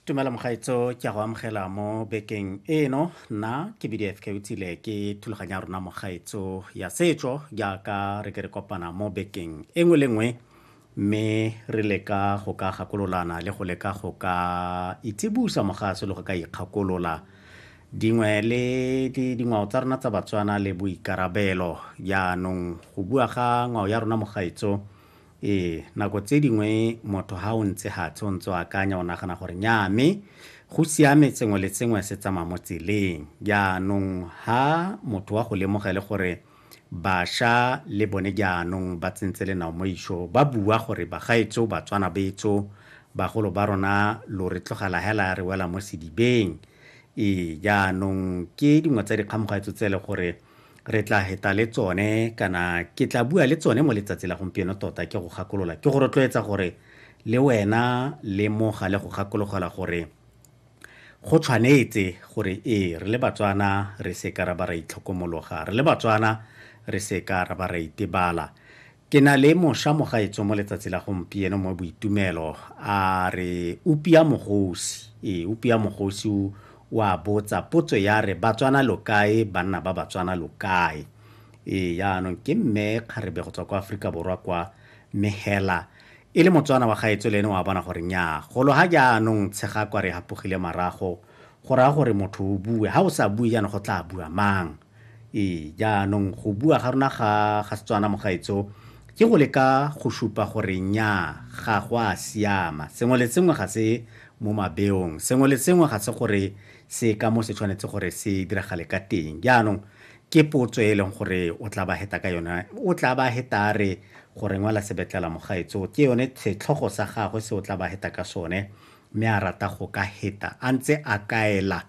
tumela mogaetso ke a go amogela mo bekeng eno nna ke bdf ke utsile ke thulaganya ya rona mogaetso ya setso jaaka re ke re kopana mo bekeng e nngwe le nngwe mme re leka go ka gakololana le go leka go ka itsibusa mogaso le go ka ikgakolola dingwe le dingwao tsa rona tsa batswana le boikarabelo jaanong go bua ga ngwao ya rona mogaetso Ee, nako tse dingwe motho ha o ntse hatshe o ntse o akanya o nagana gore nyaa mme go siame sengwe le sengwe se tsamaya mo tseleng. Jaanong ha motho wa go lemogele gore basha le bone jaanong ba tsentse lenao mo isho ba bua gore bagaetso Batswana betso bagolo ba rona lo re tlogela hela re wela mo sedibeng. Ee, jaanong ke dingwe tsa dikgamogaetso tse e le gore re tla heta le tsone kana ke tla bua le tsone mo letsatsi la gompieno tota ke go gakolola ke go rotloetsa gore le wena le moga le go gakologelwa gore go tshwanetse gore ee re le batswana re se ka ra ba ra itlhokomologa re le batswana re se ka ra ba ra itebala Ke na le mosha mogaetso mo letsatsi la gompieno mo Boitumelo a re Upia Mogosi, ee, Upia Mogosi o a botsa potso ya re Batswana lo kae, banna ba Batswana lo kae? Ee, jaanong ke Mme Kgarebe go tswa kwa Aforika Borwa kwa, mme hela e le Motswana wa gaetsho le ene o a bona gore nnyaa, golo ga jaanong Tshegako a re e hapogile marago, go raya gore motho o bue, ga o sa bue jaanong go tlaa bua mang? Ee, jaanong go bua ga rona ga ga Setswana mogaetso ke go leka go supa gore nya ga go a siama sengwe le sengwe ga se mo mabeong sengwe le sengwe ga se gore se ka mo se tshwanetse gore se diragale ka teng jaanong ke potso e leng gore o tla ba heta ka yone o tla ba heta re gore ngwala sebetlela mogaetso ke yone setlhogo sa gagwe se o tla ba heta ka sone Mme a rata go ka heta a ntse a kaela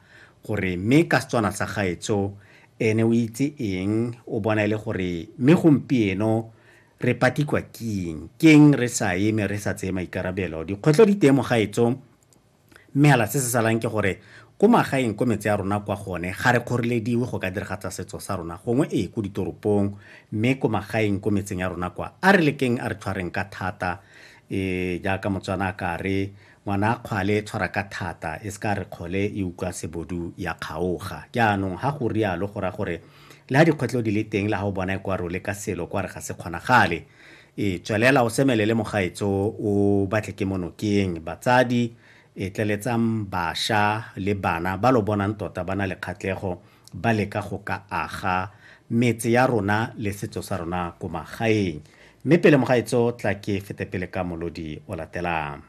gore mme ka Setswana sa gaetsho ene o itse eng, o bona e le gore mme gompieno re patikwa king, keng re sa eme re sa tseye maikarabelo. Dikgwetlho di teng mogaetsho, mme hela se se salang ke gore ko magaeng ko metse ya rona kwa gone ga re kgorelediwe go ka diragatsa setso sa rona gongwe ee ko ditoropong, mme ko magaeng ko metseng ya rona kwa a re lekeng a re tshwareng ka thata Ee, jaaka Motswana a ka re, Ngwana a kgwale e tshwara ka thata, e se ka re kgole e utlwa sebodu ya kgaoga. Jaanong, ga go rialo go raya gore le ga dikgwetlho di le teng le ga o bona e kwa re o leka selo kwa re ga se kgonagale. Ee, tswelela o semelele mogaetso o batle ke mo nokeng. Batsadi, e, tleletsang basha le bana ba lo bonang tota ba na le kgatlego ba leka go ka aga metse ya rona le setso sa rona ko magaeng mme pele mogaetso tla ke fete pele ka molodi o latelang